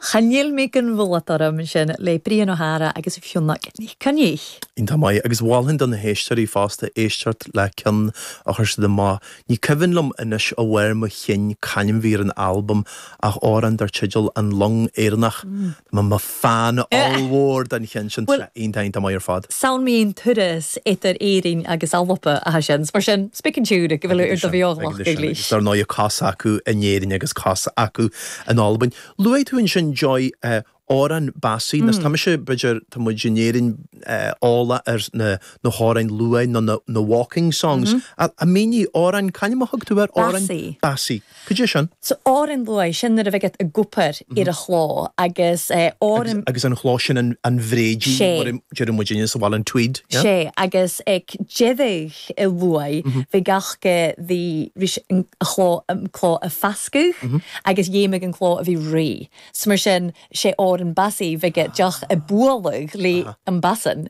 Chan eil mi gun mhulad orm ansin le Brian Ó hEadhra agus Fionnag NicChoinnich. Iontach maith, agus mholfainn do na héisteoirí fosta éisteacht le ceann a chuir siad amach, ní cuimhin liom anois ó bharr mo chinn c'ainm a bhí ar an albam ach amhrán dar teideal An Long Éireannach. Fan ollmhór den cheann sin bhuel. tráth iontach iontach maith ar fad. 'S ann mun turas eadar Èirinn agus Alba ha seans mar sin 's beag an t-iongnadh gu bheil Ag ar do sin, ag bheagnach sin. Agus, dar ndóigh, cos acu in Éirinn agus cos acu in Albain. Luaigh tú ansin Joy òrain basaidh agus tá mise b'fhéidir tá muid in Éirinn eolach ar na na h-òrain luaidh nó na na waulking songs. Mínigh òrain c'ainm a thug tú air? Òrain basaidh. Basaidh. Cad é sin? So, òrain luaidh, sin nuair a bhiodh iad ag obair air a' chlò, agus ár. Agus, agus an chló sin an, an bréidín, 'S e. mar a deireadh muidinne sa bhaile, an tweed, yeah? 'S e, agus aig deireadh an luaidh, bhiodh iad ga, bhí, bhí sé, an chló, an cló a' pasgadh, agus dhèanadh an cló a bhith rèidh. So mar sin, 's e òrain basaidh, bhiodh iad a' bualadh le am basan,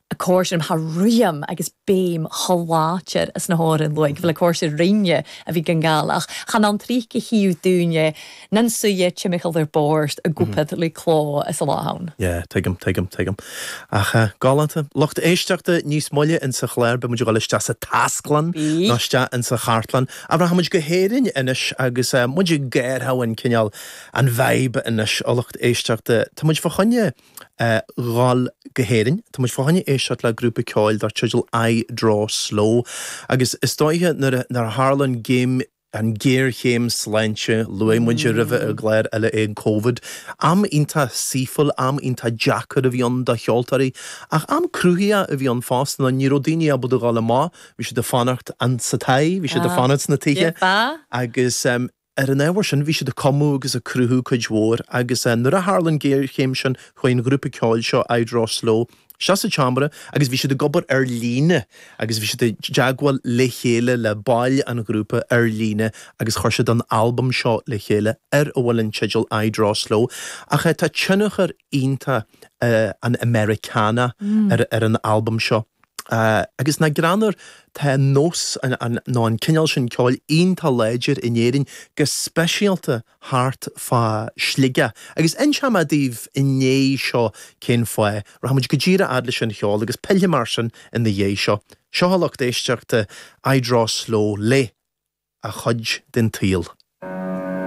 a' còrdadh rium thaobh ruitheam agus beum cho làidir anns na h-òrain luaidh gu bheil e a' còrdadh rinn a bhith gan gabhail ach chan ann tric a chì thu daoine nan suidhe timcheall air bòrd ag obair le clò san là a th' ann. Yeah, tuigim, tuigim, tuigim. Ach eh, galánta. Lucht éisteachta níos moille insa chláir, beidh muid ag dul isteach sa tasclann nó isteach insa chartlann. Rachaidh muid go hÉirinn anois agus eh, muid ag athrú an cineál, an vibe anois a lucht éisteachta. Tá muid fá choinne. dhul go hÉirinn. Tá muid fá choinne éisteacht le grúpa ceoil dar teideal I Draw Slow agus is dóiche nuair a tharla an gim, an géarchéim sláinte, luaigh muid roimhe ar chláir eile é, Covid. Am iontach saoithiúil, am iontach deacair a bhí ann do cheoltóirí, ach am cruthaitheach a bhí ann fosta, nó ní raibh daoine ábalta a dhul amach, bhí siad ag fanacht sa toigh, bhí siad ag fanacht sna tithe, agus Ar an ábhar sin, bhí siad ag cumadh agus ag cruthú cuid mhór agus nuair a tharla an géarchéim sin chuaigh an grúpa ceoil seo, I Draw Slow, isteach sa tseomra agus bhí siad ag obair ar líne agus bhí siad i dteagmháil le chéile le baill an ghrúpa ar líne agus chuir siad an t-albam seo le chéile ar a bhfuil an teideal I Draw Slow ach tá tionchar iontach an Americana ar an albam seo. Agus nach greannmhar, tá an nós, nó an cineál sin ceoil, iontach láidir in Éirinn, go speisialta thart fá Shligeach. Agus inseoidh mé daoibh i ndiaidh seo cén fáth. Rachaidh muid go díreach fhad leis an cheol, agus pillfidh mé ar sin ina dhiaidh seo. Seo a lucht éisteachta, I Draw Slow, le a chuid den tsaol.